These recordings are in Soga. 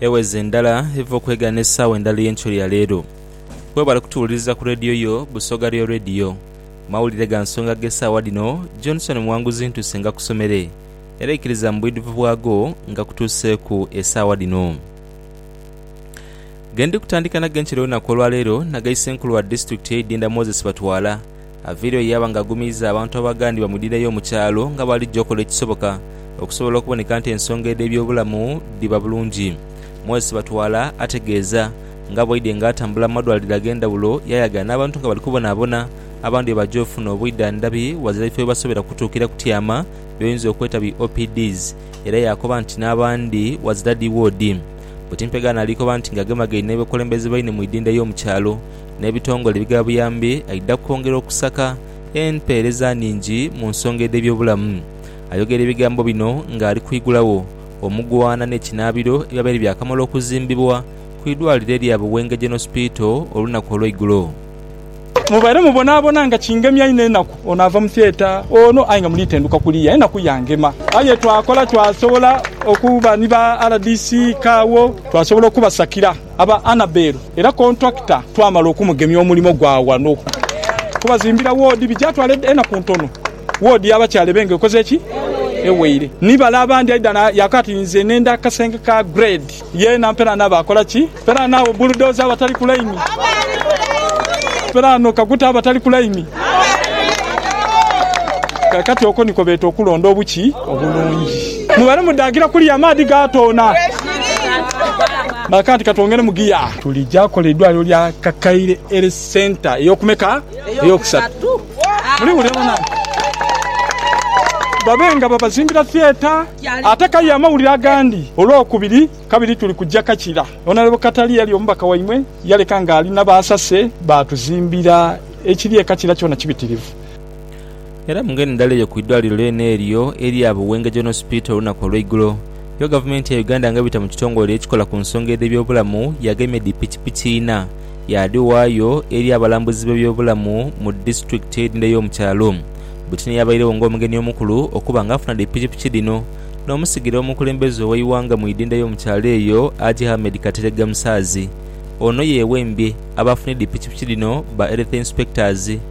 Eweze endala eva okwegaana esaawa endala ey'enkyo ya leero. Webale kutuwuliriza ku Radio yo Busoga Real Radio. Mawulire ga nsonga g'esaawa dhino, Johnson Muwanguzi ntuuse ngakusomere, era ikiriza mu bwidhuvu bwago ngakutuuseeku esaawa dhino. Gendikutandika nago enkyo y'olunaku olwaleero nagaise enkulu wa disitulikiti y'e Idinda Moses Batwala Aveeyo ye yaba ng'agumiiza abantu abaghandiba mu dhira ey'omu kyalo nga bw'alija okola ekisoboka okusobola okuboneka nti ensonga edh'ebyobulamu dhiba bulungi. Moses Batwala ategeeza nga bw'aidye ng'atambula mu madwaliro ag'endhawulo yayaga n'abantu nga bali kubonaabona abandhi bwe baja ofuna obwidhandhabi ghazira bifo byebasobera kutuukira kutyama byoyinza okweta bi OPDs era yaakoba nti n'abandhi ghazira dhi woodi. Butimpegano alikoba nti ng'agemagaine n'abakulembeze baine mu idinda y'omu kyalo n'ebitongole ebighabuyambi aidha kwongera okusaka empeereza nhingi mu nsonga edh'ebyobulamu. Ayogera ebigambo bino ng'ali kwigulagho omugwaana n'ekinaabiro ebyabaire byakamala okuzimbibwa ku idwaliro erya Buwenge Gen Hospital olunaku olweigulo. Mubaire mubonaabona nga kingemya inho enaku, ono ava mu theatre ono aye nga muli tenduka kuliya enaku yangema. Aye twakola twasobola okuba ni ba rdc, Kaawo twasobola okubasakira. Aba Annabel era kontulakita twamala okumugemya omulimo gwa wano kubazimbira woodi bijatwala enaku ntono woodi y'abakyala ebe nga ekoze ki? Eweire. Ni bale abandi aidha na yaka ati nze nenda akasenge ka grade yeena mpera n'abo akola ki? Mpera n'abo bulldozer abatali ku layini mpera no kaguta abatali ku layini. Kakati oko niko beeta okulonda obuki obulungi. Mu bale mudhaakira kuliya amaadhi gaatoona. Baakanti katwongere mu giya. Tulija kola eidwaliro lya Kakaire Health Centre ey'okumeka? Ey'okusatu. Muliwulira banange? Babe nga babazimbira theatre ate kaye amawulire agandi Olwokubiri kabiri tuli kuja Kakira. Honourable Katale eyali omubaka waimwe yaleka ng'ali na baasase baatuzimbira ekiri e Kakira kyona kibitirivu. Era mu ngeri ndala eyo ku idwaliro lyona eryo erya Buwenge General Hospital olunaku olweigulo yo gavumenti ya Uganda nga ebita mu kitongole ekikola ku nsonga edhe byobulamu yagemye dhi pikipiki ina yadhiwaayo eri abalambuzi be byobulamu mu disitulikiti edhindha eyomu kyalo Butini eyabairegho nga omugeni omukulu okuba nga afuna dhi pikipiki dhino nomusigire womukulembeze oweiwanga mu idhindha eyomu kyalo eyo Haji Ahmed Kateregga Musaazi ono yewembye abafunye dhi pikipiki dhino ba Health Inspectors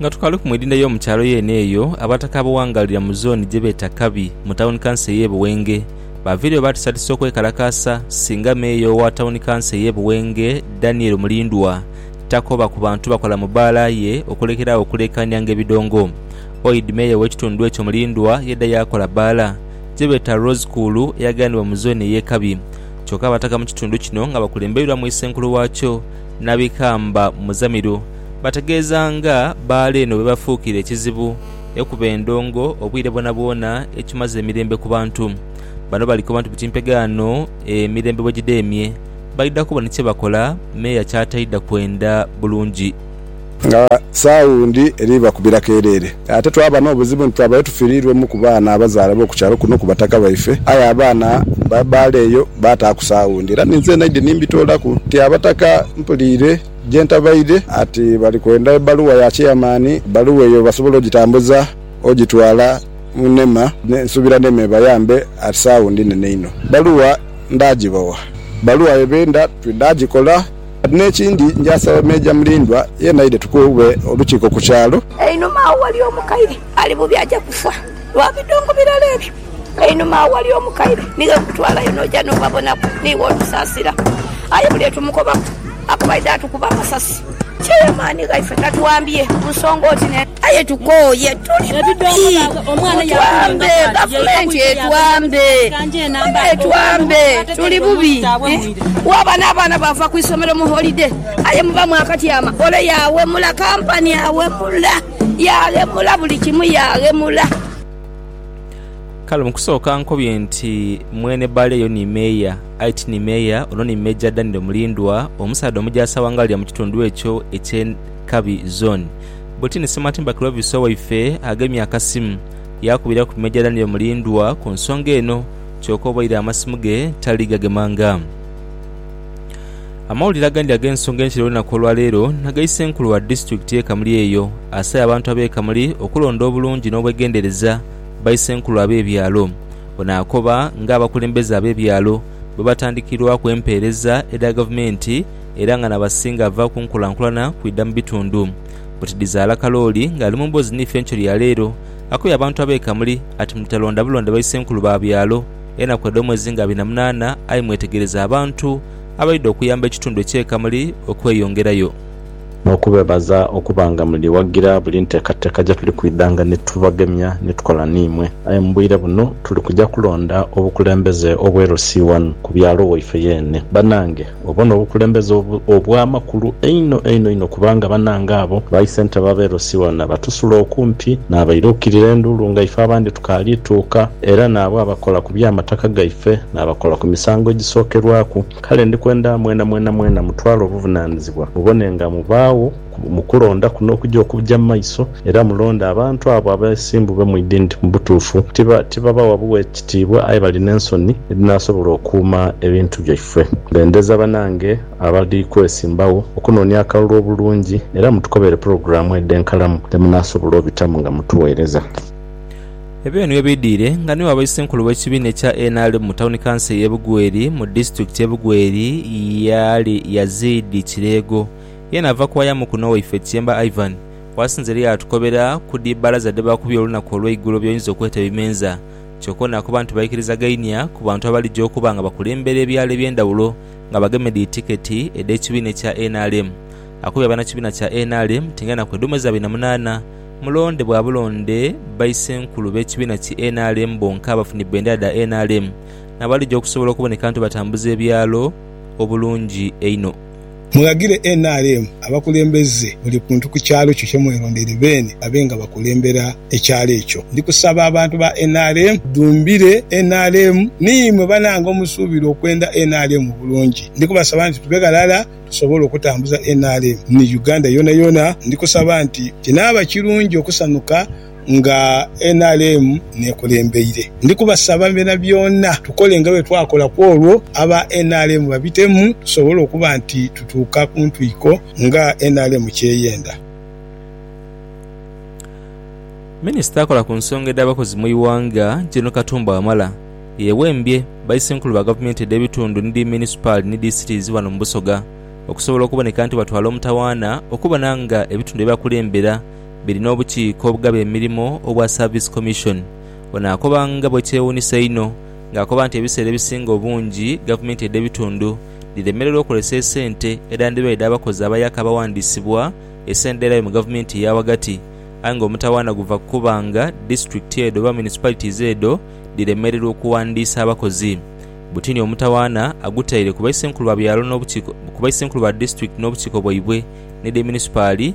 Nga tukaliku mu idinda ey'omu kyalo yeene eyo, Abataka abawangaalira mu zooni gye beeta Kabi, mu tawuni kanso ey'e Buwenge, baaviireyo baatiisatiisa okwekalakaasa singa Meeya owa tawuni kanso ey'e Buwenge, Daniel Mulindwa, takoba ku bantu bakola mu bbaala ye okulekera agho okuleekaanianga ebidongo. Oid Meeya ow'ekitundu ekyo Mulindwa yaidha yaakola bbaala gye beeta Rose Kuulu eyaghanibwa mu zooni ey'e Kabi. Kyoka Abataka mu kitundu kino nga bakulembeirwamu Isenkulu waakyo, Nabikamba Muzamiru, Bategeeza nga baale eno bwe bafuukire ekizibu ekuba endongo obwire bwonabwona ekimaze emirembe ku bantu. Bano bali koba nti buti mpegaano emirembe bwe gidheemye, baidha kuba ni kye bakola meeya ky'ataidha kwenda bulungi. Nga saawundi eri bakubira kereere. Ate twaba n'obuzibu nti twabayo tufiiriirwemu ku baana abazaalibwa ku kyalo kuno ku bataka baife. Aye abaana baale eyo baataaku saawundi era ninze naidhi ni mbitoolaku nti abataka mpuliire. gye ntabaidhe. Ati bali kwenda ebbaluwa ya chairman, ebbaluwa eyo basobole ogitambuza ogitwala mu nema. Nsuubira nema ebayambe ati sawundi nene inho. Ebbaluwa ndaagibawa. Ebbaluwa ye benda ndaagikola. Ati n'ekindi nja saba Meeja Mulindwa yena aidhe tukube olukiiko ku kyalo. Einhuma agho waliyo omukaire Ali bubi aja kufa lwa bidongo birala ebyo. Einhuma agho ghali omukaire ni ghe nkutwalayo n'oja n'obabonaku. Niiwe otusaasira. Aye buli lwe tumukobaku akuba aidha atukuba amasasi. Kyeyo amaani ghaife gatuwambye mu nsonga oti n'eti. Aye tukooye, tuli bubi. Mutuwambe, Gavumenti etuwambe. Mwebale tuwambe, tuli bubi. Waaba n'abaana baava ku isomero mu holide aye muba mwakatyama, ole yaawemula, kampani awemula. Yaaghemula buli kimu, yaaghemula. Kale mu kusooka nkobye nti mwene bale eyo ni Meeya, aye ti ni Meeya, ono ni Major Daniel Mulindwa, omusaadha omujaasi awangalira mu kitundu ekyo eky'e Nkabi Zone. Bwetini Ssematimba Clovis owaife agemye akasimu, yaakubira ku Major Daniel Mulindwa ku nsonga eno, kyoka obaire amasimu ge tali gagemanga. Amawulire agandi ag'ensonga enkile olunaku olwa leero na ga Isenkulu wa Disitulikiti y'e Kamuli eyo, asaya abantu ab'e Kamuli okulonda obulungi n'obwegendereza ba Isenkulu ab'ebyalo. Ono akoba nga abakulembeze ab'ebyalo bwe batandikirwaku empeereza edha Gavumenti era nga n'abasinga ava ku nkulankulana kwidha mu bitundu. Buti Dhizaala Kalooli ng'ali mu mboozi n'ife enkyo ya leero, akobye abantu ab'e Kamuli ati mutalonda bulonde ba Isenkulu ba byalo, Enaku edho mwezi nga abiri na munaana aye mwetegereze abantu abaidha okuyamba ekitundu ekye Kamuli okweyongerayo. N'okubeebaza okuba nga muli wagira buli nteekateeka gye tuli kwidhanga ni tubagemya ni tukola n'imwe. Aye mu bwire buno tuli kuja kulonda obukulembeze obwerusi ghano ku byalo waife yeene. Banange! Obwo n'obukulembeze obw'amakulu einho einho einho kubanga banange abo ba isentebe ab'e Rosiona batusula okumpi n'abaira okukirira enduulu nga ife abandi tukaali tuuka, era n'abo abakola ku by'amataka gaife n'abakola ku misango egisookerwaku. Kale ndi kwenda mwenamwena mwena mutwale obuvunaanizibwa mubone nga mubaagho. mu kulonda kuno okuja okuja mu maiso, era mulonde abantu abo abesimbube mu idini nti mu butuufu tibabawa bughe kitiibwa aye bali n'ensoni edhinasobola okuuma ebintu byaifwe. Bendeza banange abali kwesimbagho okunoonia akalulu obulungi era mutukobere pulogulaamu edh'enkalamu dhemunasobola obitamu nga mutuweereza. Ebyo nibyo bidhwire nga niwe abaisi enkulu w'ekibiina ekya nrm mu tawuni kanso ey'e Bugweri mu disitulikiti y'e Bugweri Yazid Kireego Ye naava ku waya mukno waife Kyemba Ivan waasinze era yaatukobera ku dhi bbalaza dhe baakubye olunaku olweigulo by'oyinza okweta ebimenza. Kyoka ono akoba nti baikiriza gainia ku bantu abalija okuba nga bakulembera ebyalo eby'endhawulo nga bagemye dhi tiketi edh'ekibiina ekya nrm. Akubye abanakibiina kya nrm ti ng'enaku edhuma eza abiri na munaana mulonde bwa bulonde bbayi ssenkulu b'ekibiina ki nrm bonka abafunye bbendera dha nrm n'abalija okusobola okuboneka nti batambuza ebyalo obulungi einho. Mughagire nrm abakulembeze buli kuntu ku kyalo kyo kye mwerondeire beene babe nga bakulembera ekyalo ekyo. Ndi kusaba abantu ba nrm tudhumbire nrm. Niimwe banange omusuubira okwenda nrm obulungi. Ndi kubasaba nti tube ghalala tusobole okutambuza nrm ni Uganda yoonayoona. Ndi kusaba nti kinaaba kirungi okusanuka nga nrm n'ekulembeire. Ndi kubasaba byonabyona tukole nga bwe twakola ku olwo aba nrm babitemu tusobole okuba nti tutuuka ku ntwiko nga nrm ky'eyenda. Minisita akola ku nsonga edh'abakozi mu ighanga, Gen. Katumba Wamala, yeewembye Baisenkulu ba Gavumenti edh'ebitundu ni dhi Munisipaali ni Disitirizi ghano mu Busoga okusobola okuboneka nti batwala omutawaana okubona nga ebitundu bye bakulembera biri n'obukiiko obugaba emirimo obwa Service Commission. Ono akoba nga bwe kyewuunisa einho ng'akoba nti ebiseera ebisinga obungi gavumenti edh'ebitundu dhiremererwa okozesa esente edhandiba edh'abakozi abayaka abawandiisibwa esenderayo mu gavumenti eya ghagati aye ng'omutawaana guva ku kuba nga disitulikiti edho oba municipalities edho dhiremererwa okuwandiisa abakozi. Butini omutawaana agutaire ku Baisenkulu ba byalo n'obukiiko ku Baisenkulu ba disitulikiti n'obukiiko bwaibwe n'edh'eminispaali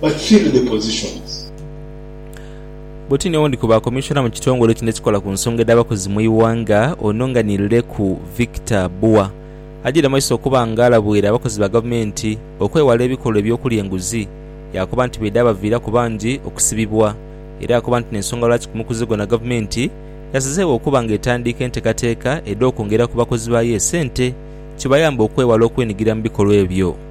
but fill the positions. Bwoti ni owundi ku ba Commissioner mu kitongole kino ekikola ku nsonga edh'abakozi mu ighanga ono nga ni Leku Victor Bua ajeire mumaiso okuba nga alabwire abakozi ba gavumenti okwewala ebikolwa eby'okulya enguzi yaakoba nti bwedhabaviiraku bangi okusibibwa era yaakoba nti n'ensonga lwaki ku mukuze gwona gavumenti yasazeegho okuba nga etandiika entekateeka edh'okwongera ku bakozi baayo esente kibayambe okwewala okwenigira mu bikolwa ebyo.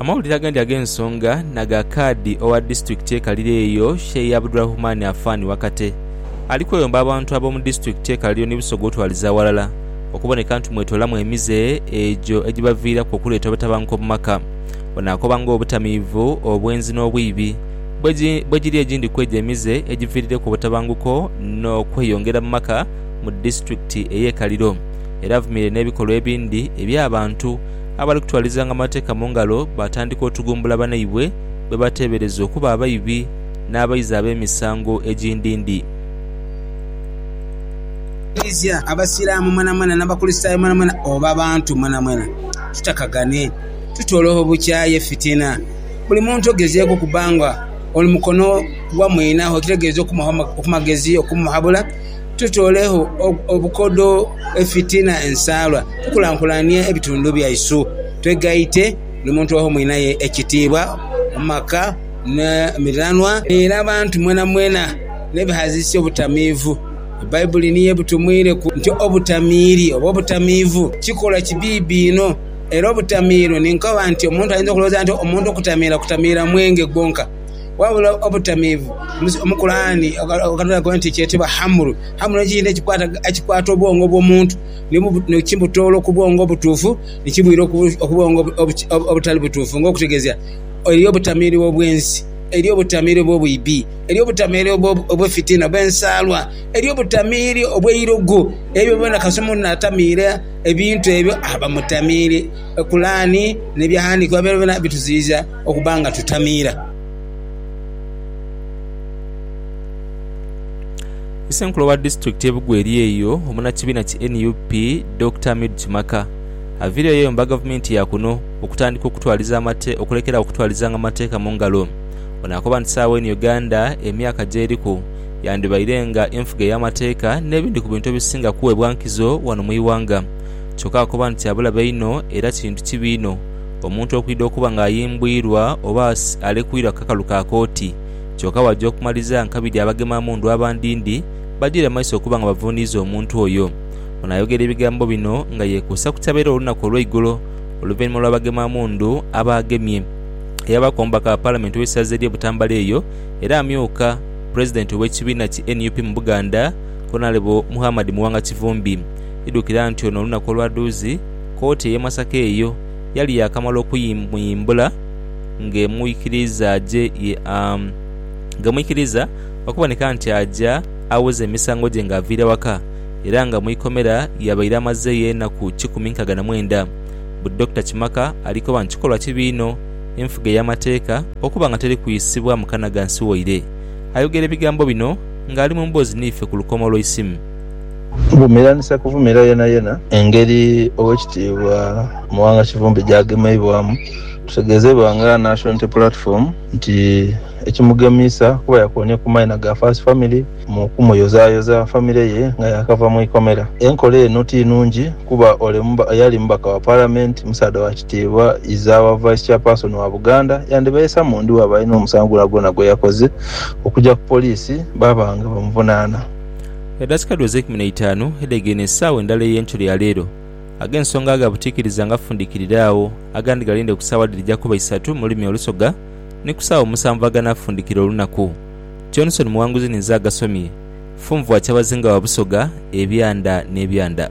Amawulire agandi ag'ensonga na ga kaadi owa disitulikiti ekalire eyo Sheih Abdulrahman Afan Wakate ali kweyomba abantu ab'omu disitulikiti ekalire ni Busoga otwaliza aghalala okuboneka nti mwetoolamu emize egyo egibaviiraku okuleeta obutabanguko mu maka. Ono akoba ng'obutamiivu, obwenzi n'obwibi bwegiri egindi kwegyo emize egiviirireku obutabanguko n'okweyongera mu maka mu disitulikiti ey'e Kaliro. Era avumirire n'ebikolwa ebindi eby'abantu abali kutwalizanga amateeka mu ngalo baatandika otugumbula banaibwe be bateebereza okuba abaibi n'abaizi ab'emisango egindindi. Eklezia, Abasiraamu mwenamwena n'Abakulisitaayo mwenamwena oba abantu mwenamwena tutakagane, tutolewo obukyayi, effitina. Buli muntu ogezeeku okuba nga oli mukono gwa mwinagho, ekitegeeza okumuwa amagezi, okumuhabula. tutoleegho obukodho, efitina, ensaalwa, tukulankulanie ebitundu byaisu, twegaite buli muntu aghe mwinaye ekitiibwa mu maka, mu miranwa n'eri abantu mwenamwena n'ebighaziisa obutamiivu. Baibuli niyo ebutumwireku nti obutamiiri oba obutamiivu kikolwa kibiibi inho. Era obutamiiro ni nkoba nti omuntu ayinza okulowooza nti omuntu okutamiira, kutamiira mwenge gwonka. Wabula obutamiivu mu Kulaani okatulaku nti kyetebwa hamlu. Hamlu nikyo kintu ekikwata obwongo bw'omuntu nikibutoola oku bwongo obutuufu nikibwira oku bwongo obutali butuufu nga okutegeeza eriyo obutamiivu obw'ensi, eriyo obutamiivu obw'obwibi, eriyo obutamiivu obw'efitina, obw'ensaalwa, eriyo obutamiivu obw'eirogo. Ebyo byona kasita omuntu naatamiira ebintu ebyo aba mutamiire. Kulaani n'ebighandiikibwa byona bituziyiza. okuba nga tutamiira. Issenkulu wa disitulikiti ye Bugweri eyo omunakibiina ki nup Dokita Hamidu Kimaka aviireyo yayomba gavumenti ya kuno okutandika okutwaliza amate okulekeragho okutwalizanga amateeka mu ngalo. Ono akoba nti saagho eno Uganda emyaka gyeriku yandibaire nga enfuga ey'amateeka n'ebindi ku bintu ebisinga kuweebwa nkizo wano mu ighanga kyoka akoba nti abulabe inho era kintu kibi inho omuntu okwidha okuba nga ayimbwirwa oba alekwirwa ku kakalu ka kooti kyoka bwaja okumaliza nkabidhi abagema mundu abandindi bajire mu maiso okuba nga bavundiiza omuntu oyo. Ono ayogera ebigambo bino nga yekuusa ku kyabaire olunaku olweigulo oluvainhuma lwa bagema mundu abaagemye eyabaaku omubaka wa palamenti ow'eisaza erye Butambala eyo era amyuka pulezidenti ow'ekibiina ki nup mu Buganda Honalebo Muhamad Muwanga Kivumbi. Idhukira nti ono olunaku olwadhuuzi, kkooti ey'e Masaka eyo yali yaakamala okumuyimbula ng'emwikiriza aje ng'emwikiriza okuboneka nti aja awoza emisango gye ng'aviire waka era nga mu ikomera yabaire amazeeyo enaku kikumi nkaaga na mwenda bu Dokita Kimaka ali koba nti kikolwa kibi inho enfuga ey'amateeka okuba nga teri kuyisibwa mu kana gansi waire ayogera ebigambo bino ng'ali mu mboozi niife ku lukomo lw'eisimu. Vumiranisa kuvumira yenayena. Engeri Owekitiibwa Muwanga Kivumbi gyagemeibwamu tutegezeibwa nga Nasho Unity Platform nti ekimugemiisa kuba yakoonye ku maina ga First Family mu kumuyozayoza famire ye nga yakava mu ikomera. Enkola eno ti nungi kuba ole eyali mubaka wa Palamenti, musaadha wa kitiibwa, iza wa Vice Chairperson wa Buganda yandibaisa mu ndhi bwaba alina omusango gwonagwona gweyakoze okugya ku poliisi baba nga bamuvunaana. Edakika dhu ez'eikumi n'eitaanu edhegeine esaawa endala ey'enkyero ya leero. Ag'ensonga agha butiikiriza nga fundikirira agho, agandi galinde ku saawa dhirija kuba isatu mu lulimi olusoga, ni ku saawa omusanvu aganaafundikira olunaku. Johnson Muwanguzi ninze agasomye. Funvu wa Kyabazinga wa Busoga, Ebyanda n'Ebyanda.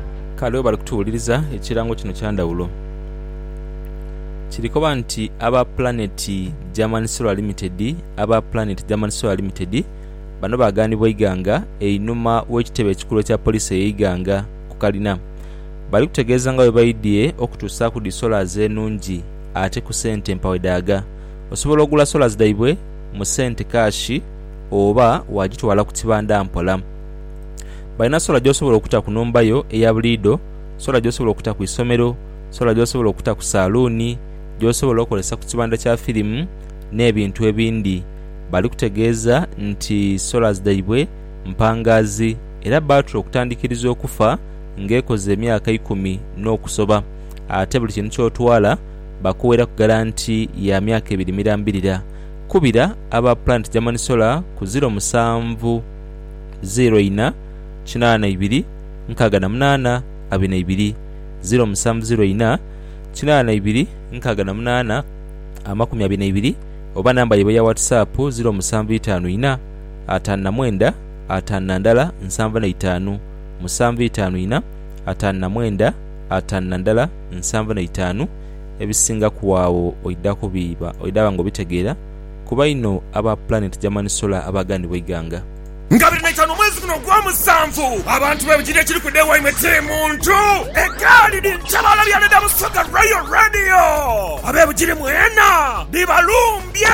Kale bwe bali kutuwuliriza, ekirango kino kya ndhawulo. Kiri koba nti aba Planet German Solar Limited Aba Planet German Solar Limited bano baaganibwa Iganga einhuma w'ekitebe ekikulu ekya poliisi eye Iganga ku kalina. Bali kutegeeza nga bwe baidhie okutuusaaku dhi solas enungi ate ku sente mpawedhaaga. Osobola ogula solas dhaibwe mu sente kaashi oba waagitwala ku kibanda mpola. Balina sola gy'osobola okuta ku nhumba yo eya buliidho, sola gy'osobola okuta ku isomero, sola gy'osobola okuta ku saaluuni, gy'osobola okozesa ku kibanda kya firimu n'ebintu ebindi. Bali kutegeeza nti sola dhaibwe mpangaazi era bbaatule okutandikiriza okufa ng'ekoze emyaka ikumi n'okusoba ate buli kintu ky'otwala bakuweeraku garanti ya myaka ebiri mirambirira. Kubira aba Planet German Solar ku ziro musanvu. 0 ina kinaana ibiri nkaaga na munaana abiri na ibiri 0 musanvu 0 ina kinaana ibiri nkaaga na munaana amakumi abiri na ibiri oba namba yaibwe eya WhatsApp 0 musanvu itaanu ina ataanu na mwenda ataanu na ndala nsanvu na itaanu musanvu itaanu ina ataanu na mwenda ataanu na ndala nsanvu na itaanu Ebisingaku agho oidha kubiiba oidha ba nga obitegeera kuba inho aba Planet German Solar abaaganibwa eighanga. Nga biri naitanu omwezi guno ogwa musanvu, abantu be Bugiri ekiri kuda ewaimwe ti muntu. Egaali dhiri kyebaalabyana dha Busoga Royal Radio, abe Bugiri mwena dhibalumbye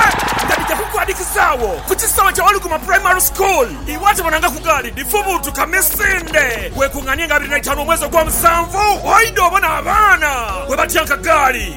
nga dhija kukwadhikizaagho ku kisaawe kya Waluguma Primary School. Iwe ate bonangaku gaali dhifubuutuka misinde. Weekung'anie nga abiri naitanu omwezi ogwa musanvu oidhe obone abaana bwebatyanka gaali.